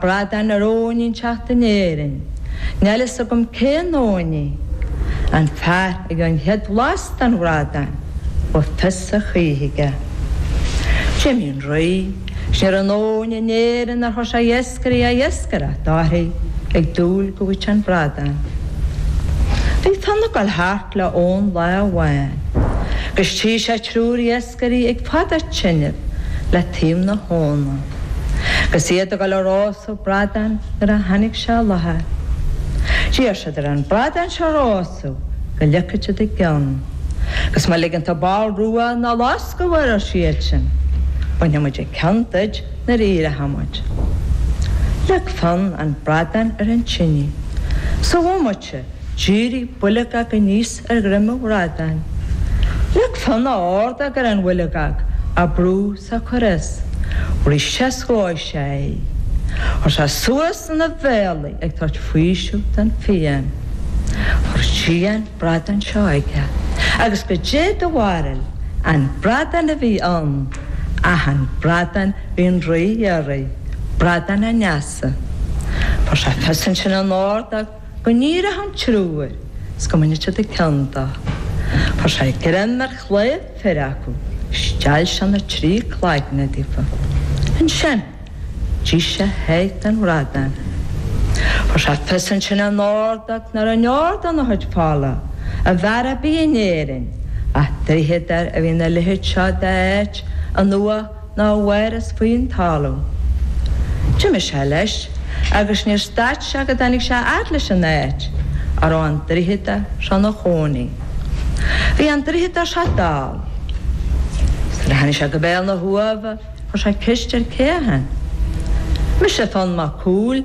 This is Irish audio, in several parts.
Bradán ar abhainn inteacht in Éirinn. Níl a fhios agam cén abhainn í. An fear a gheobhadh an chéad bhlas den bhradán, bheadh fios a choíche aige. D'imigh an Rí, 's ní raibh aon abhainn in Éirinn nár chuir sé iascairí a iascaireacht uirthi ag dúil go bhfaigheadh sé an bradán. Bhí Fionn ag dul thart le abhainn lá amháin agus tchí sé triúr iascairí ag fadú tineadh le taobh na habhna agus iad ag dul a rósadh bradáin nuair a tháinig sé i láthair. D'iarr siad air an bradán seo a rósadh go ligfeadh siad a gceann agus má ligeann tú ball rua ná loscadh air, ar siadsan, bainfidh muid an ceann duid nuair a éireoidh muid. Leag Fionn an bradán ar an tinidh. Sa bhomaite, d'éirigh builgeog aníos ar dhroim an bhradáin. Leag Fionn a ordóg ar an bhuilgeog á brú 's a' cuir is bhris sé 's dhóigh sé í. Chuir sé suas ina bhéal í ag tabhairt faoiseamh don phian. Chuir sí an bradán seo aige agus goidé do bharúil an bradán a bhí ann ach an bradán a bhí an rí a iarraidh, bradán an fheasa. Fuair sé fios ansin ina ordóg. go n-éireodh an triúr, 's go mbainfeadh siad an ceann de. Fuair sé greim ar chlaíomh fir acu, steall sé na trí cloigne díofa. Ansin, d'ith sé a sháith den bhradán. Fuair sé fios ansin ina ordóg nach raibh aon fhear ina chuid fola, ab fhearr a bhí in Éirinn, ach draíodóir a bhí ina leithéid seo de áit, in uaigh, ná mhaireas faoin talamh. D'imigh sé leis agus níor stad sé go dtáinig sé fhad leis an áit a raibh an draíodóir seo 'na chónaí. Bhí an draíodóir seo dall. Nuair a tháinig sé go béal na huamha chuir sé ceist air cé a shin. Mise Fionn Mac Cumhaill,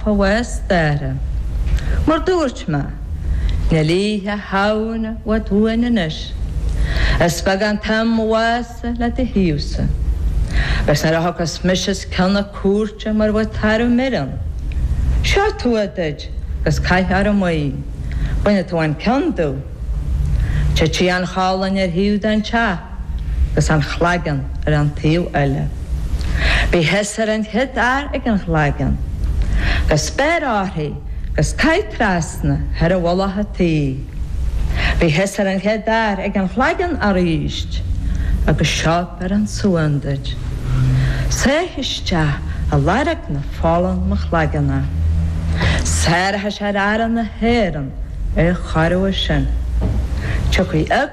fheabhas staire. Mar dúirt mé, níl Oíche Shamhna i bhfad uainn anois. Is beag an t-am a bheas le do thaobhsa. Agus nuair a thiocfas mise chun na cúirte mar bheadh tarbh mire ann, seo tua duit 'gus caith orm í, bainfidh tú an ceann domh. Titfidh an cholainn ar thaobh den teach. agus an chloigeann ar an taobh eile. Bí thusa ar an chéad fhear ag an chloigeann agus beir uirthi agus caith trasna thar mhullach an tí. Bí thusa ar an chéad fhear ag an chloigeann arís agus seo biorán suain duit. Sáigh isteach i lorg na fola in mo chloigeann é. Saorfaidh sé Aire na hÉireann é chóir uair sin. Tiocfaidh a.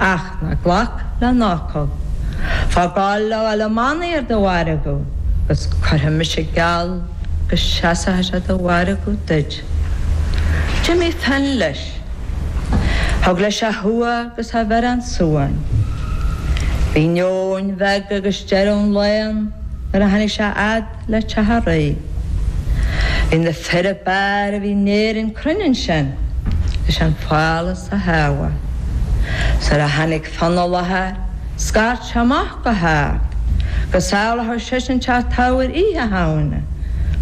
Ach ná glac lena fhocal. Faigh Goll le ghabháil i mbannaí ar do mhargadh agus cuirfidh mise geall go seasfaidh sé do mhargadh duit. D'imigh Fionn leis. Thug leis a thua agus a bhiorán suain. Bhí neoin bheag agus deireadh an lae ann nuair a tháinig sé fhad le Teamhraigh. Bhí na fir ab fhearr a bhí in Éirinn cruinn ansin leis an phálás a shábháil. 'S nuair a tháinig Fionn i láthair, scairt sé amach go hard go sábhálfadh seisean teach Teamhair Oíche Shamhna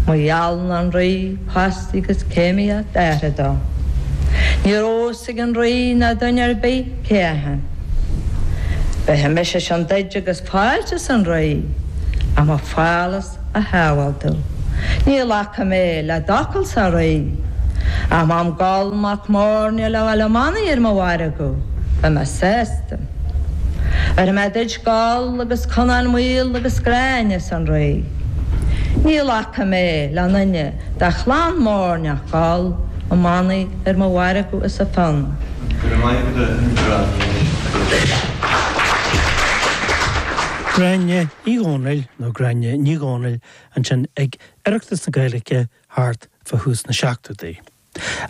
má gheallann an Rí post agus céimíocht a athara dó. Ní raibh a fhios ag an Rí ná duine ar bith cé a bhí ann. Bhéarfaidh mise sin duid agus. Fáilte sonraí a mbeadh follas a shábháil tú. Níl fhaca mé le d'fhocal sonraí ach má an Goll Mac Móirne le Bhaile Manaigh ar mo mhargadh, beidh mé sásta. Oir mé duit Goll agus Conán Maol agus Gráinne sonraí. Níl fhaca mé le duine de chlann Móirne ach Goll, Ó Manaigh ar mo mhargadh is a fon. Go raibh maith agat, a Ghráinne. Gráinne Uí Dhónaill, nó Gráinne Ní Dhónaill ansin ag Oireachtas na Gaeilge thart fá thús na seachtóidí.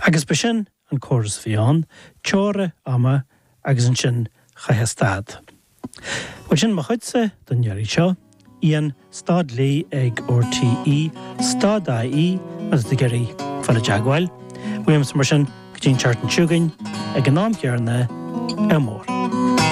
Agus ba sin an córas a bhí ann, teora ama agus ansin chaithfeá stad. Bhuel sin mo chuidse don iarraidh seo. Ian, stad Lee ag RTÉ, stad IE agus tú ag iarraidh fanacht i dteagmháil uaimse mar sin go dtí an tseachtain seo chugainn ag an am chéarna, Ádh mór!